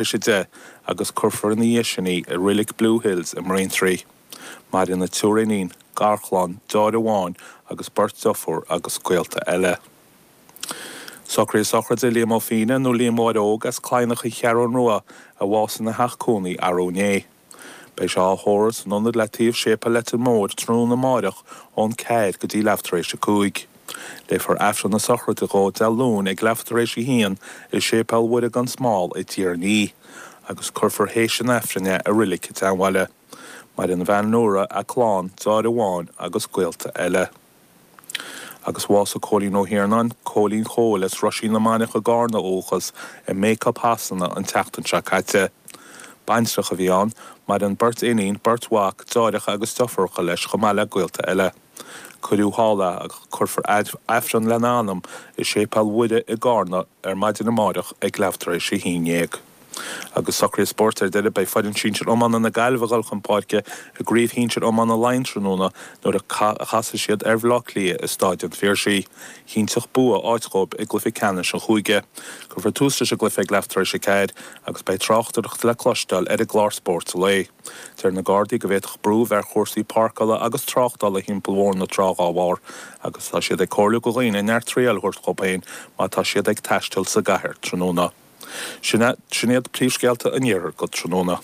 leis 10 agus cuirfear ina dhiaidh sin í i Reilig Blue Hills i mBraintree. Maireann a triúr iníon, garchlann, deartháir amháin agus beirt deirfiúr agus gaolta eile. Socruithe sochraide Liam Ó Féinne nó Liam Mháire Óg as Cladhnach An Cheathrú Rua a bhásaigh ina theach cónaí arú inné. Beidh sé á thórramh san ionad le taobh Séipéal Leitir Móir tráthnóna amáireach ón 4 go dtí leath tar éis a cúig. Léifear Aifreann na sochraide dhó Dé Luain ag leath tar éis a haon i Séipéal Mhuire gan Smál i dTír an Fhia agus cuirfear théis an Aifrinn é i Reilig an tSeanbhaile. Maireann a bhean Nóra, a clann, deartháir amháin agus gaolta eile. Agus bhásaigh Cóilín Ó hIarnáin, Cóilín Chóil, as Roisín na Mainiach i gCarna ó dhúchas, i Bacup Shasana an tseachtain seo caite. Baintreach a bhí ann. Maireann beirt iníon, beirt mhac, deartháireacha agus deirfiúracha leis chomh maith le gaolta eile. Cuireadh thall é agus léifear Aifreann lena anam i Séipéal Mhuire i gCarna ar maidin amáireach ag leath tar éis a haon dhéag. Agus cúrsaí spóirt ar deireadh. Beidh foireann sinsir iomána na Gaillimhe ag goil chun páirce i gcraobh shinsir iomána Laighean tráthnóna nuair a chasfaidh siad ar Bhleá Cliath i Stáid an Phiarsaigh. Chinnteodh bua áit dhóibh i gcluiche ceannais an chúige. Cuirfear tús leis an gcluiche ag leath tar éis a ceathair agus beidh tráchtaireacht le cloisteáil ar an gclár Spórt an Lae. Deir na Gardaí go bhféadfadh brú bheith ar chúrsaí páirceála agus tráchtála thimpeall Bhóthar na Trá dhá bharr agus tá siad ag comhairliú go dhaoine neart traíáil a thabhairt dhóibh féin má tá siad ag taisteal sa gcathair tráthnóna. Sin iad príomhscéalta an Iarthair go tráthnóna.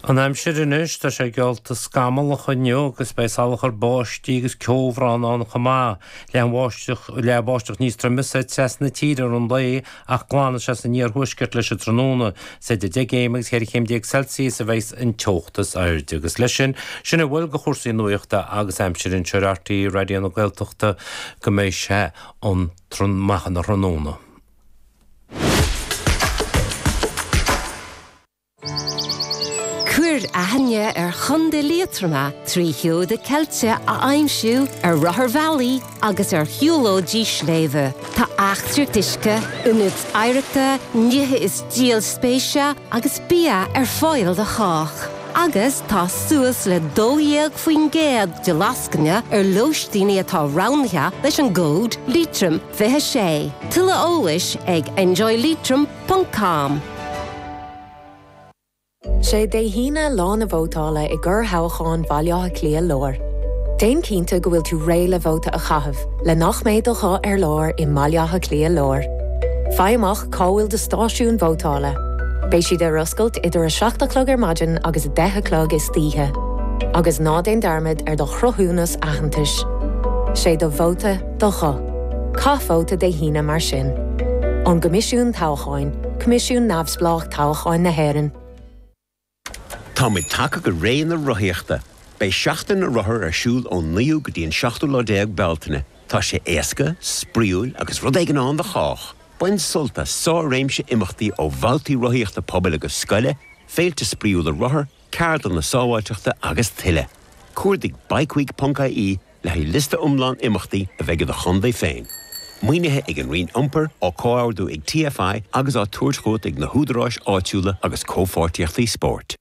An aimsir anois, tá sé geallta scamallach inniu agus beidh salachar báistí agus ceobhrán ann chomh maith, le an bháisteach, le báisteach níos troime soir trasna na tíre i rith an lae ach glanfaidh sé san iarthuaisceart leis an tráthnóna. Is idir 10 gcéim agus 14 chéim Celsius a bheidh an teocht is airde. Agus leis sin, sin a bhfuil go chúrsaí nuachta agus aimsire anseo ar RTÉ Raidió na Gaeltachta go mbeidh sé a haon a chlog tráthnóna. Cuir aithne ar Chontae Liatroma trí sheoda ceilte a aimsiú ar rotharbhealaí agus ar shiúlóidí sléibhe. Tá eachtraíocht uisce, ionaid oidhreachta, nithe is díol spéise agus bia ar fáil do chách. Agus tá suas le 12% de lascaine ar lóistín atá roghnaithe leis an gcód Liatroim. 26. Tuilleadh eolais ag enjoyleitrim ponc com. Sé Dé hAoine lá na vótála i gcorr-thoghchán Bhaile Átha Cliath Láir. Déan cinnte go bhfuil tú réidh le vóta a chaitheamh le nach mbeidh do ghuth ar lár i mBaile Átha Cliath Láir. Faigh amach cá bhfuil do stáisiún vótála. Beidh siad ar oscailt idir 7 a chlog ar maidin agus 10 a chlog istoíche. Agus ná déan dearmad ar do chruthúnas aitheantais. Sé do vóta. Do ghuth. Caith vóta Dé hAoine mar sin. Ón gCoimisiún Toghcháin, coimisiún neamhspleách toghcháin na hÉireann. Táimid tagtha go ré na rothaíochta. Beidh Seachtain na Rothar ar siúl ón 9ú go dtí an 7ú déag Bealtaine. Tá sé éasca, spraíúil agus rud éigin ann do chách! Bain sult as sár-réimse imeachtaí ó bhabhtaí rothaíochta pobail agus scoile, féilte spraíúla rothar, Ceardlanna Sábháilteachta agus Tuilleadh. Cuardaigh bikeweek.ie le haghaidh liosta iomlán imeachtaí a bheidh i do chontae féin. Maoinithe ag an Roinn Iompair, á comhordú ag TFI agus á tabhairt chugat ag na húdaráis áitiúla agus comhpháirtíochtaí spóirt.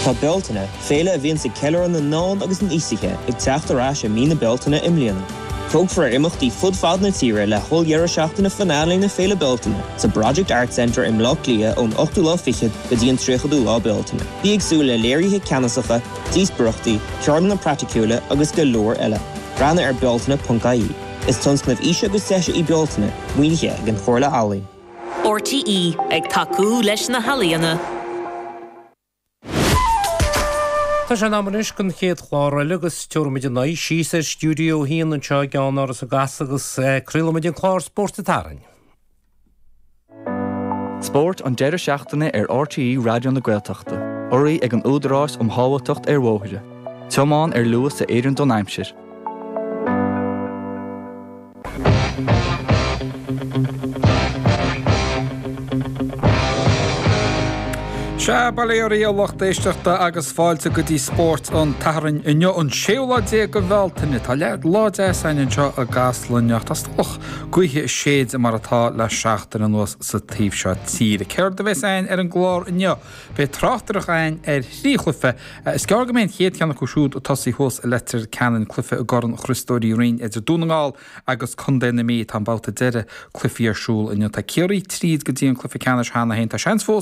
Tá Bealtaine, féile a bhíonns ag ceiliúradh na n-ealaíon agus an aosaithe, ag teacht ar ais i mí na Bealtaine i mbliana. Tógfar imeachtaí fud fad na tíre le holldeireadh seachtaine Finale Féile Bealtaine sa Project Arts Centre i mBleá Cliath ón 8ú lá fichead go dtí an 30ú lá Bealtaine. Bí ag súil le léirithe ceannasacha, díospóireachtaí, ceardlanna praiticiúla agus go leor eile. Breathnaigh ar Bealtaine.ie. Is tionscnamh aoise agus deise í Bealtaine, maoinithe ag an Chomhairle Ealaíon. RTÉ ag tacú leis na healaíona. Tá sé in am anois don chéad chlár eile agus tabharfaimid ár n-aghaidh síos ar Stiúideo 1 anseo i gCeannáras i gCasla agus craolfaimid an clár Spórt an tSathairn. Spóirt an deireadh seachtaine ar RTÉ Raidió na Gaeltachta. Urraithe ag an Údarás um Shábháilteacht ar Bhóithre. Tiomáin ar luas a oireann don aimsir. Sea, bail ó Dhia oraibh a lucht éisteachta agus fáilte go dtí Spórt an tSathairn inniu, an séú lá déag de Bhealtaine. Tá leath lá deas againn anseo i gCasla ach tá an-teallach Gaoithe ag séideadh mar atá le seachtain anuas sa taobh seo tíre. Céard a bheas againn ar an gclár inniu? Beidh tráchtaireacht againn ar thrí chluife. Is gearr go mbeidh an chéad cheann acu siúd ag tosaí thuas i Leitir Ceanainn, cluife i gCorn Chriostóir Uí Rinn idir Dún na nGall agus Contae na Mí. Tá an babhta deireadh cluifí ar siúl inniu. Tá Ciarraí tríd go dtí an cluife ceannais cheana féin. Tá seans fós